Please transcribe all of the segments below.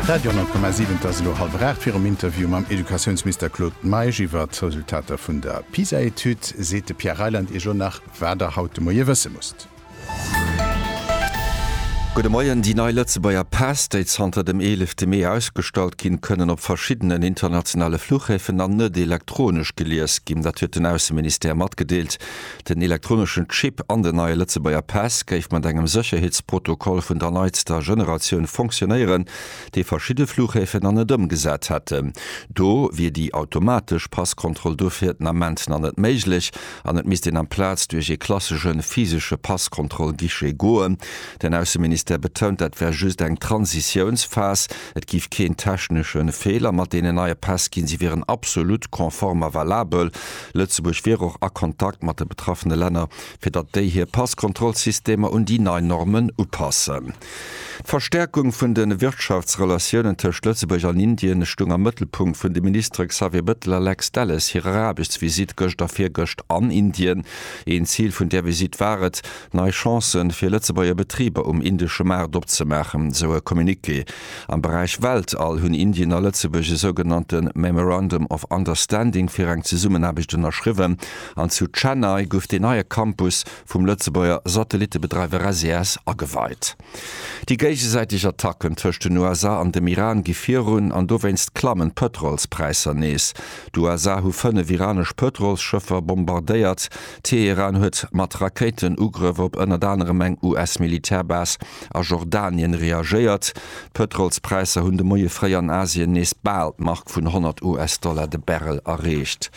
Radio 10,7 Et ass elo hallwer 8. Virum Interview mam Educatiounsminister Claude Meisch iwwert d'Resultater vun der PISA-Etüd seet de Pierre Reyland Iech elo nach, wat Der haut de Moie wësse musst. Gudde Moien. Déi nei Lëtzebuerger Päss, déi zanter dem 11 Mee ausgestallt ginn, kënnen op verschiddenen internationale Fluchhäfen an net elektronesch gelies ginn. Dat huet den Ausseministère matgedeelt. Den elektroneschen Chip an den neie Lëtzebuerger Päss géif mat engem Sécherheetsprotokoll vun der neitster Generatioun funktionéieren, dee verschidde Flughäfen nach net ëmgesat hätten. Do wier déi automatesch Passkontroll dofir den Ament nach net méiglech an et misst een amplaz duerch ee klassesche physesche Passkontroll-Guichet goen. Den Ausseministère betount, dat wär just eng Transitiounsphas, et géif keen technesche Feeler mat deenen neie Päss ginn, si wieren absolut konform a valabel. Lëtzebuerg wier och a Kontakt mat de betraffene Länner, fir datt déi hir Passkontrollsystemer un déi nei Normen upassen. D'Verstäerkung vun de Wirtschaftsrelatiounen tëscht Lëtzebuerg an Indien stung am Mëttelpunkt vun de Ministere Xavier Bettel a Lex Delles hirer Aarbechtsvisitt gëscht a virgëscht an Indien. Een Zil vun där Visitt war et, nei Chancë fir Lëtzebuerger Betriber um indesche Maart opzemaachen, sou e Communiqué. Am Beräich Weltall hunn Indien a Lëtzebuerg e sougenannte Memorandum of Understanding fir eng Zesummenaarbecht ënnerschriwwen an zu Chennai gouf deen neie Campus vum Lëtzebuerger Satellittebedreiwer SES ageweit. Déi géigesäiteg Attacken tëscht den USA an dem Iran gi virun an dowéinst klammen d'Pëtrolspräisser nees. D'USA hu fënnef iranesch Pëtrolsschëffer bombardéiert, Teheran huet mat Rakéitenugrëff op ënnert anerem eng US-Militärbas a Jordanien reagéiert. D'Pëtrolspräisser hunn de Moie fréi an Asien nees bal d'Mark vun 100 US-Dollar de Barrel erreecht.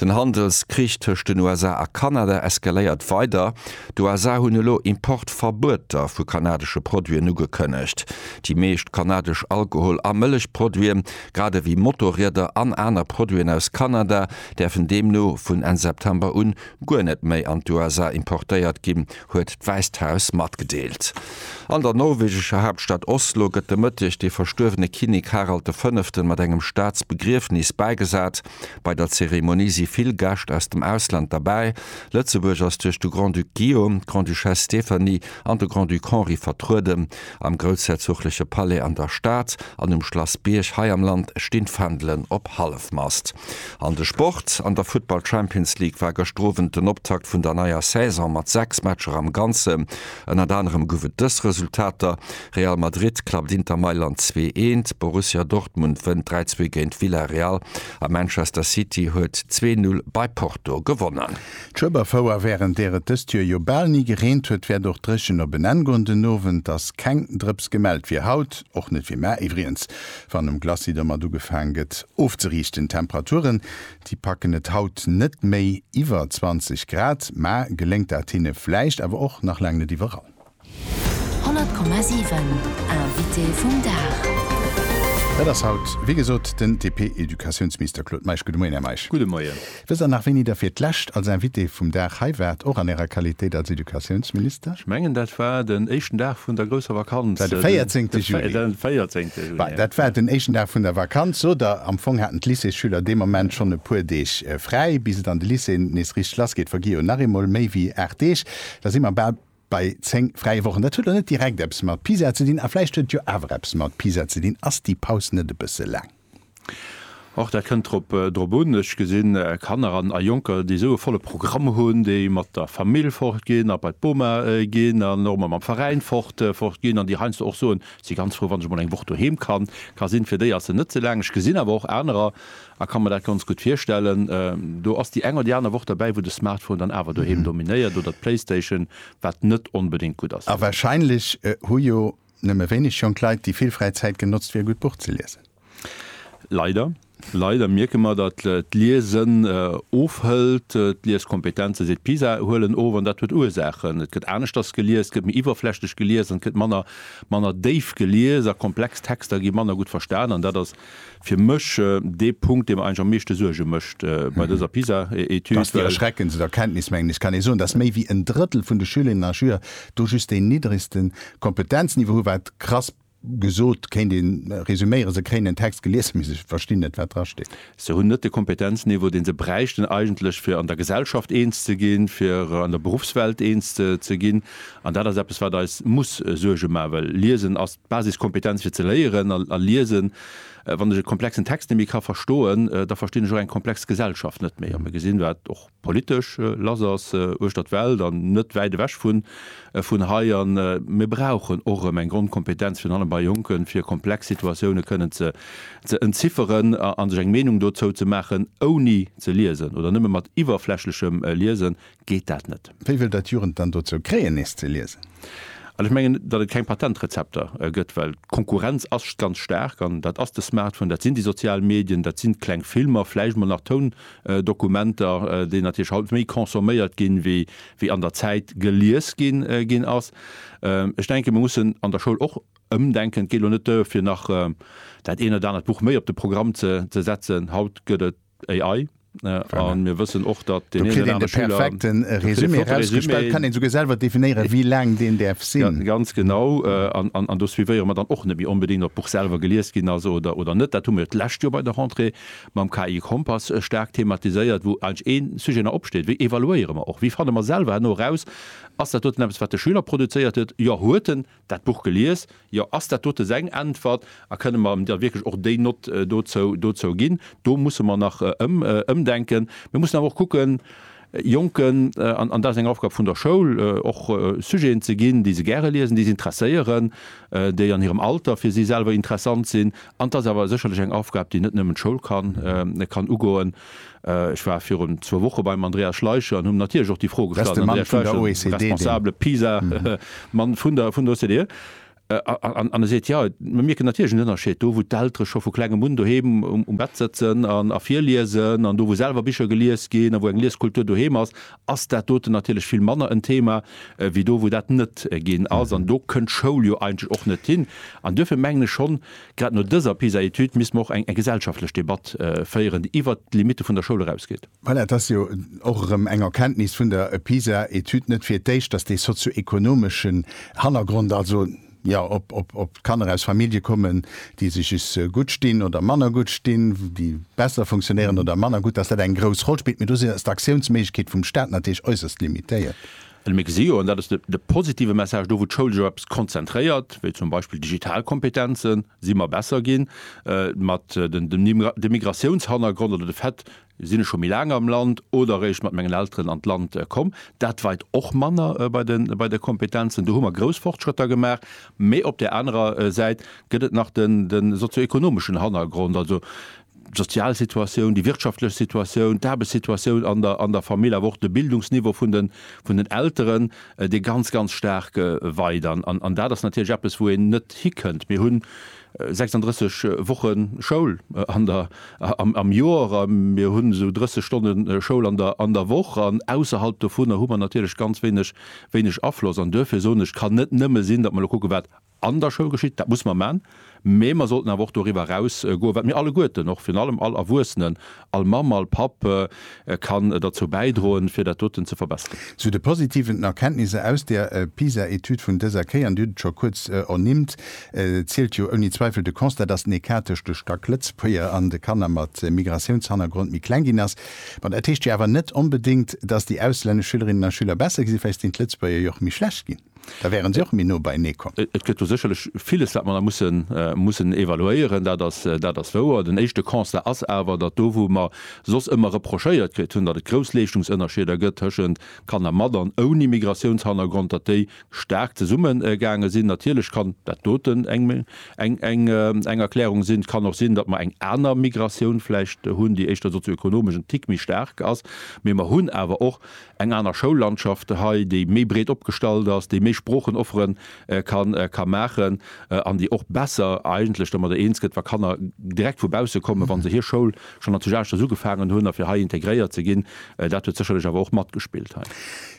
Den Handelskrich tëscht den USA a Kanada eskaléiert weider. D'USA hunn elo Importverbueter vu kanadesche Produiten ugekënnegt. Déi meescht kanadesch Alkohol a Mëllechproduite grad ewéi Motorrieder an aner Produiten aus Kanada, däerfen deemno vun Enn September un guer net méi an d'USA importéiert ginn, huet d'Wäisst Haus matgedeelt. An der norwegescher Haaptstad Oslo gëtt de Mëtteg de verstuerwene Kinnek Harald de Fënneften mat engem Staatsbegriefnis bäigesat. Bei der Zeremonie si vill Gäscht aus dem Ausland derbäi. Lëtzebuerg ass duerch de Grand-Duc Guillaume, d'Grande-Duchesse Stéphanie an de Grand-Duc Henri vertrueden. Am groussherzogleche Palais an der Stad an um Schlass Bierg hei am Land stinn d'Fändelen op Hallefmast. An de Sport, An der Futtball Champions League war gëschter Owend den Optakt vun der neier Saison mat 6 Matcher am Ganzen. Ënnert anerem gouf et dës Resultater, Real Madrid klappt Inter Mailand 2, 1, Borussia Dortmund wënnt 3, 2 géint Villarreal a Manchester City huet 2, 0 bei Porto gewonnen. D'Schueberfouer, wärend där et dëst Joer jo bal ni gereent huet, wäert och dréchen op en Enn goen. Den Owend ass keng Drëps gemellt, fir haut och net. Fir mar iwwrigens, wann um Glacis domat ugefaang gëtt ofzeriichten. D'Temperaturen, déi packen et haut net méi iwwer 20 Grad, mar geléngt dat hinne vläicht, awer och nach laang net iwwerall. 100,7 Invité vum Dag. Dat ass haut, wéi gesot, den DP-Educatiounsminister Claude Meisch. Gudde Moien, Här Meisch. Gudde Moien. Wësst Der nach, wéini Der fir d'lescht als Invité vum Dag hei waart, och an Ärer Qualitéit als Educatiounsminister? Ech mengen, dat war den éischten Dag vun der grousser Vakanz. Dat war de 14. Juli. Den 14. Juli, ja. Dat war den éischten Dag vun der Vakanz, sot Der. Am Fong haten d'Lycéesschüler dee Moment schonn e puer Deeg fräi. Bis et an de Lycéeën nees richteg lassgeet, vergi jo nach eemol méi wéi aacht Deeg. Da si mer bal Bei 10 fräie Wochen, dat huet elo net direkt eppes mat Pisa ze dinn, a vläicht huet et jo awer eppes mat Pisa ze dinn, ass déi Paus net e bësse laang? Och dat kënnt drop un. Ech gesinn Kanner a Jonker, déi esou e volle Programm hunn, déi mat der Famill fort ginn a bei d'Boma ginn an och emol mam Veräin fort ginn an déi heiansdo och soen, ech si ganz frou, wann ech emol eng Woch doheem ka sinn. Fir déi ass se net ze laang. Ech gesinn awer och anerer, A kann mer dat ganz gutt virstellen. Do ass déi eng oder déi aner Woch derbäi, wou de Smartphone dann awer doheem dominéiert oder d'Playstation, wat net onbedéngt gutt ass. A wahrscheinlech hu jo nëmme wéineg jonk Leit déi vill fräi Zäit genotzt, fir e gutt Buch ze liesen. Leider, leider mierke mer, datt d'Liesen ofhëlt. D'Lieskompetenze, seet d'PISA, huelen of. An dat huet Ursaachen. Et gëtt aneschters gelies, et gëtt méi iwwerflächlech gelies an et gëtt manner, manner déif gelies a komplex Texter gi manner gutt verstan. An dat ass Fir mech dee Punkt, dee mer eigentlech am meeschte Suerge mécht bei dëser PISA-Etüd. Dass déi erschreckendst Erkenntnis, mengen ech, kann ee soen, dass méi wéi en Drëttel vun de Schülerinnen a Schüler do just deen niddregste Kompetenzniveau hu, wat krass gesot kéint ee resuméieren, se kréien en Text gelies, mee se verstinn net, wat drasteet. Se hunn net de Kompetenzniveau, dee se bräichten eigentlech, fir an der Gesellschaft eens ze ginn, fir an der Berufswelt eens ze ginn. An dat ass eppes, wat eis muss Suerge maachen, well Liesen ass D'Basiskompetenz fir ze léieren a liesen. Wann ech e komplexen Text net méi ka verstoen, da verstinn ech och eng komplex Gesellschaft net méi. A mir gesinn, wat och politesch lass ass uechter d'Welt an net wäit ewech vun hei. A mir brauchen och erëm eng Grondkompetenz, virun allem bei Jonken, fir komplex Situatioune kënnen ze entzifferen a sech eng Meenung dozou ze maachen. Ouni ze liesen oder nëmme mat iwwerflächlechem Liesen geet dat net. Wéi wëllt Der d'Jugend dann dozou kréien, nees ze liesen? Ech mengen, datt et keng Patentrezepter gëtt, well d'Konkurrenz ass ganz staark. An dat ass de Smartphone, dat sinn déi sozial Medien, dat sinn d'kleng Filmer, vläicht mol nach Toundokumenter, déi natierlech haut méi consomméiert ginn, wéi an der Zäit gelies ginn ass. Ech denken, mir mussen an der Schoul och ëmdenken. Et geet elo net duer, fir nach dat eent oder anert Buch méi op de Programm ze setzen. Haut gëtt et AI an mir wëssen och datt deen een oder anere Schüler. Do kritt een de perfekten Résumé erausgespellt, kann een souguer selwer definéieren wéi laang deen däerf sinn. Ganz genau, an do suivéiere mer dann och net méi onbedéngt ob d'Buch selwer gelies ginn ass oder net. Dat hu mir d'lescht Joer bei der Rentrée mam KI Kompass staark thematiséiert, wou eigentlech ee Sujet nach opsteet, wéi evaluéiere mer och, wéi fanne mer selwer herno eraus, ass dat doten eppes wat de Schüler produzéiert huet, jo huet en, Dat Buch gelies? Jo. Ass dat dote seng Äntwert? A kënne mer der wierklech och déi Nott dozou ginn? Do musse mer nach ëmdenken. Mir mussen awer och kucken, Jonken, an dat ass eng Aufgab vun der Schoul, och Sujeten ze ginn, déi se gäre liesen, déi se interesséieren, déi an hirem Alter fir si selwer interessant sinn. An et ass awer sécherlech eng Aufgab, déi net nëmmen d'Schoul kann ugoen. Ech war virun zwou Woche beim Andreas Schleicher an hunn him natierlech och déi Fro gestallt, den Andreas Schleicher, den responsabele PISA Mann vun der OCDE, an e seet, jo, mir mierken natierlech en Ënnerscheed do, wou d'Eltere scho vu klengem un doheem um Bett sëtzen a virliesen an do, wou selwer Bicher gelies ginn a wou eng Lieskultur doheem ass, ass dat doten natierlech vill manner en Thema wéi do, wou dat net ginn ass. An do kënnt d'Schoul jo eigentlech och net hin. An duerfir mengen ech schonn, Grad no dëser PISA-Etüd misste mer och eng gesellschaftlech Debatt féieren, déi iwwert d'Limitte vun der Schoul erausgeet. Voilà, et ass jo och erëm eng Erkenntnis vun der PISA-Etüd, net fir d'éischt, datt dee sozioekonomeschen Hannergrond, also jo ob d'Kanner aus Famillje kommen, déi sech just gutt stinn oder manner gutt stinn, déi besser funktionéieren oder manner gutt, datt dat eng grouss Roll spillt. Mee do ass d'Aktiounsméiglechkeet vum Staat natierlech äusserst limitéiert. Well mir gesi jo, an dat ass de positive Message, do wou d'Schoul sech op eppes konzentréiert, wéi zum Beispill Digitalkompetenzen, si mer besser ginn. Mat dem Migratiounshannergrond oder de Fait, sinn ech scho méi laang am Land oder eréischt mat mengen Elteren an d'Land komm, dat weit och manner bei de Kompetenzen. Do hu mer grouss Fortschrëtter gemaach. Mee op där anerer Säit gëtt et nach de sozioekonomeschen Hannergrond. d'sozial Situatioun, déi wirtschaftlech Situatioun, d'Aarbechtssituatioun an der an der Famill, awer och de Bildungsniveau vun den vun den Elteren, dee ganz ganz staark weit. An an an dat ass natierlech eppes, wou een net hikënnt. Mir hu 36 Woche Schoul an der am am Joer a mir hunn esou 30 Stonne Schoul an der an der Woch an ausserhalb dovunner hu mer natierlech ganz wéineg wéineg Afloss. An duerfir soen ech, et kann net nëmme sinn, datt mer elo kucke wat an der Schoul geschitt, dat muss mer man, mä mer sollten awer och doriwwer eraus goen, wat mir alleguerten, och virun allem all Erwuessenen, all Mamm, all Papp kann derzou bäidroen, fir dat doten ze verbessern. Zu de positiven Erkenntnisser aus der PISA-Etüd vun dëser Kéier, an Dir hutt et scho kuerz ernimmt, zielt jo ouni Zweifel de Constat, dass den Ecart tëscht de Stack-Lëtzebuerger an de Kanner mat Migratiounshannergrond méi kleng ginn ass. Mä dat heescht jo awer net onbedéngt, dass déi auslännesch Schülerinnen a Schüler besser ginn, sinn, vläicht sinn d'Lëtzebuerger jo och méi schlecht ginn. Da wären se och méi no beienee komm. Et gëtt do sécherlech villes, wat mer nach mussen, mussen evaluéieren. Dat ass, dat ass wouer. Den éischte Constat ass awer, datt do, wou mer soss ëmmer reprochéiert kritt hunn, datt et grouss Leeschtungsënnerscheeder gëtt tëschent Kanner mat an ouni Migratiounshannergrond, datt déi staark zesummegaange sinn. Natierlech kann dat doten eng, eng, eng, eng Erklärung sinn. Et kann och sinn, datt mer eng aner Migratioun vläicht hunn, déi éischter sozioekonomesch en Tick méi staark ass. Mee mer hunn awer och eng aner Schoullandschaft hei, déi méi breet opgestallt ass, déi méi Sproochen offere kann, ka maachen an déi och besser eigentlech domadder eens gëtt, wa Kanner direkt vu bausse kommen, wa se hir Schoul schonn an Tschecheschters ugefaangen hunn, a fir hei integréiert ze ginn. Dat huet sécherlech awer och matgespillt hei.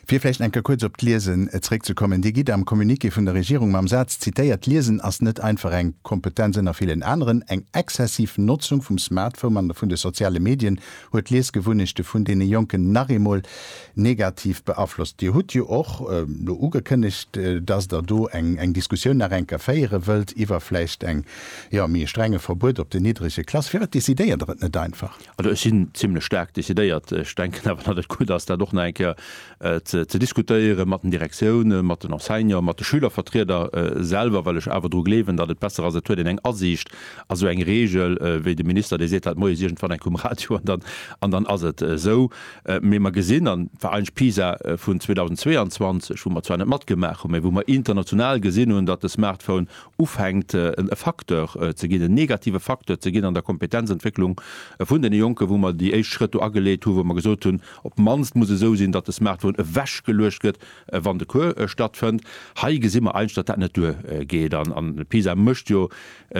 Fir vläicht eng Kéier kuerz op d'Liesen zréckzekommen. Dir gitt am Communiqué vun der Regierung mam Saz zitéiert, D'Liesen ass net einfach eng Kompetenz ënner villen aneren. Eng exzessiv Notzung vum Smartphome an vun de soziale Medien Huet d'Liesgewunnechte vun deene Jonken nach eemol negativ beaflosst? Dir hutt jo och elo ugekënnegt, dass Der do eng Diskussioun nach eng Kéier féiere wëllt iwwer vläicht eng, jo, méi e strenge Verbuet op den niddrege Klasse. Firwat decidéiert Der et net einfach? Also ech sinn zimlech staark decidéiert. Ech denken awer, datt et gutt ass, dat och nach eng Kéier et ze diskutéieren mat den Direktiounen, mat den Enseignanten, mat de Schülervertrieder selwer, well ech awer dru gleewen, datt et besser ass, et huet een eng Asiicht a sou eng Reegel, wéi de Minister, dee seet dat moies iergendwann enk um Radio an dann, an dann ass et esou. Mee mer gesinn, an war eigentlech d'PISA vun 2022, wou mer zwar net matgemaach hunn, mä wou mer international gesinn hunn, datt de Smartphone ufänkt e Facteur ze ginn, en negative Facteur ze ginn an der Kompetenzentwécklung vun deene Jonken, wou mer déi éischt Schrëtt do ageleet hunn, wou mer gesot hunn, Op d'mannst muss esou sinn, datt de Smartphone ewechgeluecht gëtt, wann de Cours stattfënnt. Hei gesi mer eigentlech, datt dat net duer geet. An PISA mécht jo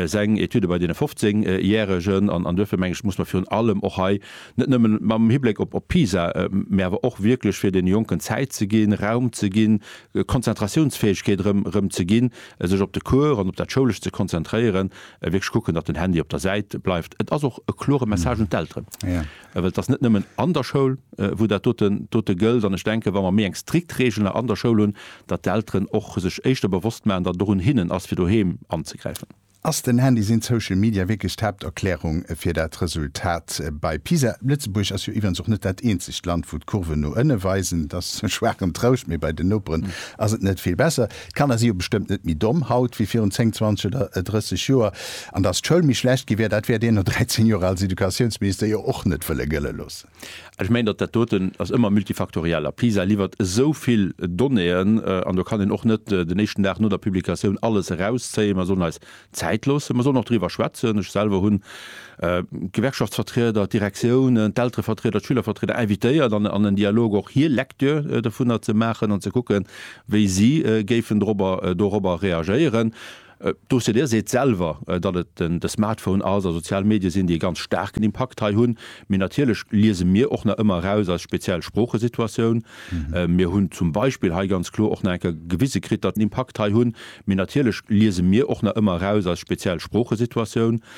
seng Etüde bei deene 15 Järegen. An duerfir, mengen ech, muss mer virun allem och hei, net nëmmen mam Hibléck op PISA, mä awer och wierklech fir deene Jonken Zäit ze ginn, Raum ze ginn, Konzentratiounsfäegkeet erëm ze ginn, sech op de Cours an op dat Schoulescht ze konzentréieren, wierklech kucken, datt den Handy op der Säit bleift. Et ass och e klore Message un d'Elteren. Well et ass net nëmmen an der Schoul, wou dat dote gëllt. An ech denken, wa mer méi eng strikt Reegel an der Schoul hunn, datt d'Elteren och sech éischter bewosst maachen, datt et och un hinnen ass, fir doheem anzegräifen. Ass den Handy, sinn d'Social Media wierklech d'Haapterklärung fir dat Resultat bei PISA? Lëtzebuerg ass jo iwwerens och net dat eenzegt Land, wou d'Kurven no ënne weisen. Et ass e schwaachen Trouscht, mee bei den Noperen ass et net vill besser. D'Kanner si jo bestëmmt net méi domm haut wéi virun 10, 20 oder 30 Joer. An dass d'Schoul méi schlecht gi wär, dat wäert een no 13 Joer als Educatiounsminister jo och net wëlle gëlle loossen. Ech mengen, datt dat doten ass ëmmer multifaktoriell. A PISA liwwert esou vill Donnéeën, an do kann een och net den éischten Dag no der Publikatioun alles erauszéien. Mer sollen eis Zäit loossen. Mer sollen och doriwwer schwätzen. Ech selwer hunn d'Gewerkschaftsvertrieder, d'Direktiounen, d'Elterevertrieder, d'Schülervertrieder invitéiert an en Dialog och hir Lecture dovunner ze maachen an ze kucken, wéi si géifen dorobber dorobber reagéieren. D'OCDE seet selwer, datt et de Smartphone ass a sozial Medie sinn, déi e ganz staarken Impakt hei hunn. Mee natierlech liese mir och nach ëmmer eraus eis speziell Sproochesituatioun. Mir hunn zum Beispill hei ganz kloer och nach eng Kéier gewise kritt, datt en Impakt hei hunn, Mee natierlech liese mir och nach ëmmer eraus eis speziell Sproochesituatioun,